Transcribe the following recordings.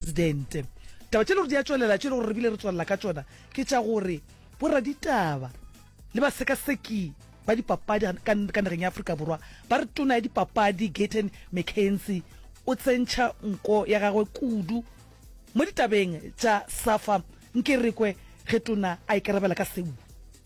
Presidente. Taba tše le gore di a tšwelela, tše le gore re bile re tswelela ka tšona ke tša gore boraditaba le basekaseki ba dipapadi ga- ka ka nageng ya Afrika Borwa ba re tona ya dipapadi Gayton McKenzie o tsentšha nko ya gagwe kudu mo ditabeng tša Safa Nkerekwe ge tona a ikarabela ka seo.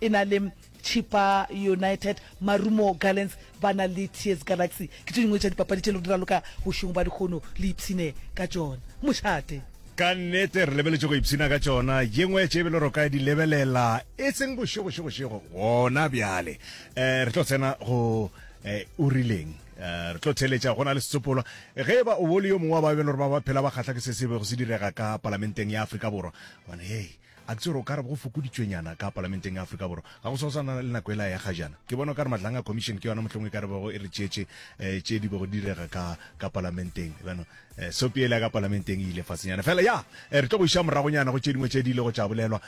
e na le Chippa United, Marumo Gallants ba na le Tears Galaxy. Ke tše dingwe tša dipapadi tše le go di raloka bošegong ba dikgono le ipshine ka tšona. Mošate. Ka nnete re lebeletše go ipshina ka tšona. Ye nngwe ya tše e be le ro ka di lebelela e seng bošegošegošego gona bjale. Um re tlo tsena go um o rileng. Um re tlo theeletša go na le setsopolwa. Ge e ba o bo le yo mongwe wa ba e be le gore ba ba phela ba kgahla ke se se bego se direga ka palamenteng ya Afrika Borwa, gobane hei, A tsere o ka re go fokoditšwenyana ka Palamenteng ya Afrika Borwa, ga go sa go sa na le nako ela ya gajana. Ke bona o ka re matlhang a Commission ke yona mohlomong e ka re bego e re tšeetše tše di bego di direga ka ka Palamenteng. Bjano sopi ela ya ka Palamenteng e ile fasenyana fela. Ya, re tlo go iša moragonyana go tše dingwe tše di ilego tša bolelwa.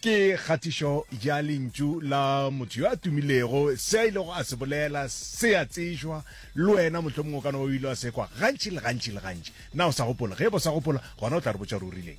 Ke kgatišo ya lentšu la motho yo a tumilego, se a ilego a se bolela se a tsejwa, le wena mohlomong o ka no ba o ile wa se kwa gantši le gantši le gantši. Na o sa gopola? Ge e ba o sa gopola, gona o tla re botša gore o rileng.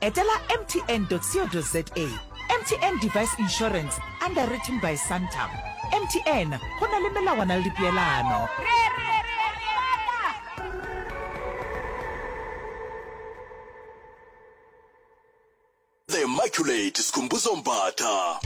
Etela mtn.co.za MTN Device Insurance, underwritten by Santam. MTN, go na le melawana le dipeelano. The Immaculate Skhumbuzo Mbatha.